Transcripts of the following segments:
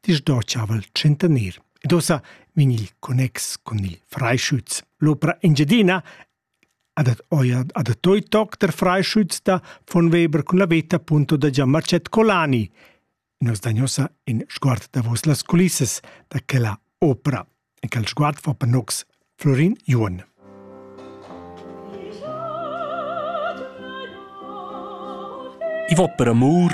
disdocciaval tschentaner. Ed ossa vegn il connex con il Freischütz. L'opera Engiadina adat oia adattoi toc der Freischütz da von Weber cun la veta punto da Giamacet Colani. Nos dagnosa in sguard davos las culissas da quella opera. e quel sguard fa panocs Florin Juon. I vot per amur,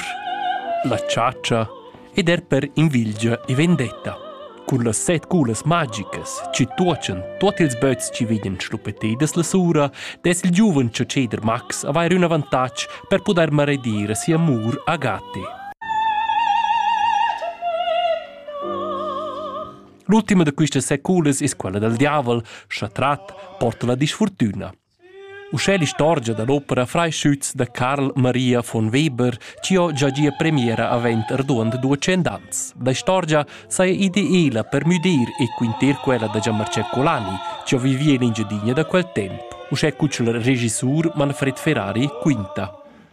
la ciacia ed er per invilgia e vendetta. Cun las set culas magicas ci tuocen tuot ils böts ci viden schluppetedas la sura, des il giuven cioceder Max avair un avantatg per poder maredire si amur a Gate. L'ultima da questas seculas es quella dal diavel, scha trat porta la disfortüna. Uschè l'istorgia da l'opera Freischütz da Karl Maria von Weber chi ho già gia premiera avent arduond duecent ans. La istorgia saja ideela per müdir e quinter quella da Gianmarcè Colani, chi ho vivì in Engiadina da quel temp. Uschè cucel regissur Manfred Ferrari quinta.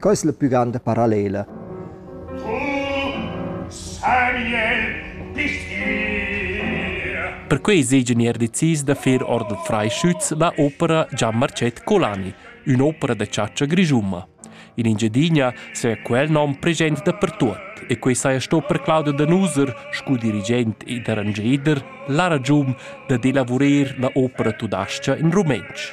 Co es la püganda parallela? Perquei seigenier decis da fer ord Freischütz la opera Gian Marcet Colani, ün'opera da chatscha grischuma. In Engiadina saja quel nom present dapertuot e quei saja sto per Claudio Danuser, scu dirigent ed arrangeder, la ragiun dad elavurer la opera tudascha in rumentsch.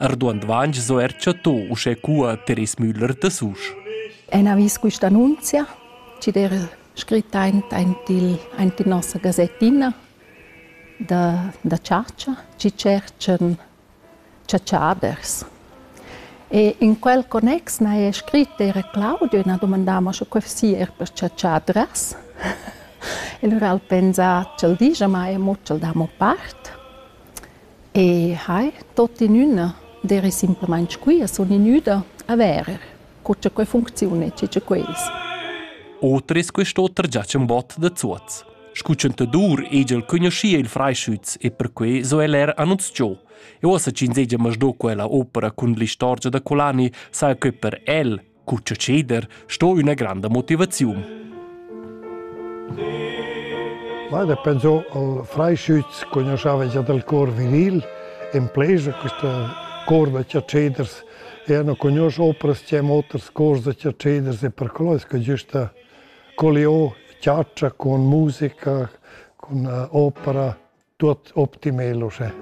Arduond vainch s'ho er chattò uschè cua Teres Müller da Susch. En avis quista annunzia, chi'd eira scrit aint, aint, il, aint in nossa gazettina da, da chatscha, chi tscherchan chatschaders. E in quel connex n'haja scrit eir Claudio e n'ha dumandà mo sche que sia er per chatschadras. E lura al pensà ch'el digia, ma emo ch'el dà mo part. E hai tuottinüna d'eira simplamaing quia, sun gnüda a verer co cha que funcziuna e co cha que es. Oter es quest'oter già ün bot da Zuoz. Scu chantadur egl cugnuschia il Freischütz e perquai so el er annunzchò. E uossa ch'ins hegia masdo quella opera cun l'istorgia da Colani, saja que per el Cuccia ceder sto üna granda motivaziun. Ma da pensò al Freischütz conosceva già dal cor viril in pleja questa cor da ceders e hanno conosce opras che haben oters cors da ceders e per quello es que giusta colliò ciaccia con musica, con uh, opera. Tuot optimel uschè.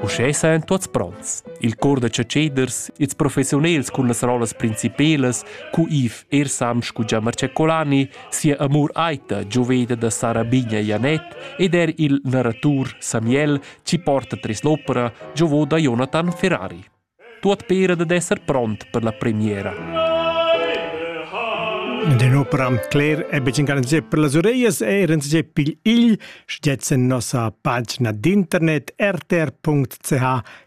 Uschè sajan tuots pronts. Il cor da chatscheders, ils professiunels cun las rollas principelas, cu Yves Ersam scu Giamar Ceccolani, sia amur aita gioveda da Sara Bigna Janet ed er il narratur Samuel ci porta tres l'opera giovo da Jonathan Ferrari. Tuot pera dad esser pront per la premiera. Denopra am cler è betg garanzia per las ureias e renze pigl igl stgets en nossa pagina d'internet rtr.ch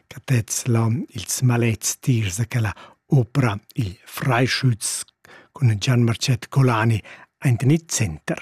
catez la ils malets tirs a quella opera il Freischütz cun Gian Marcet Colani aint in center.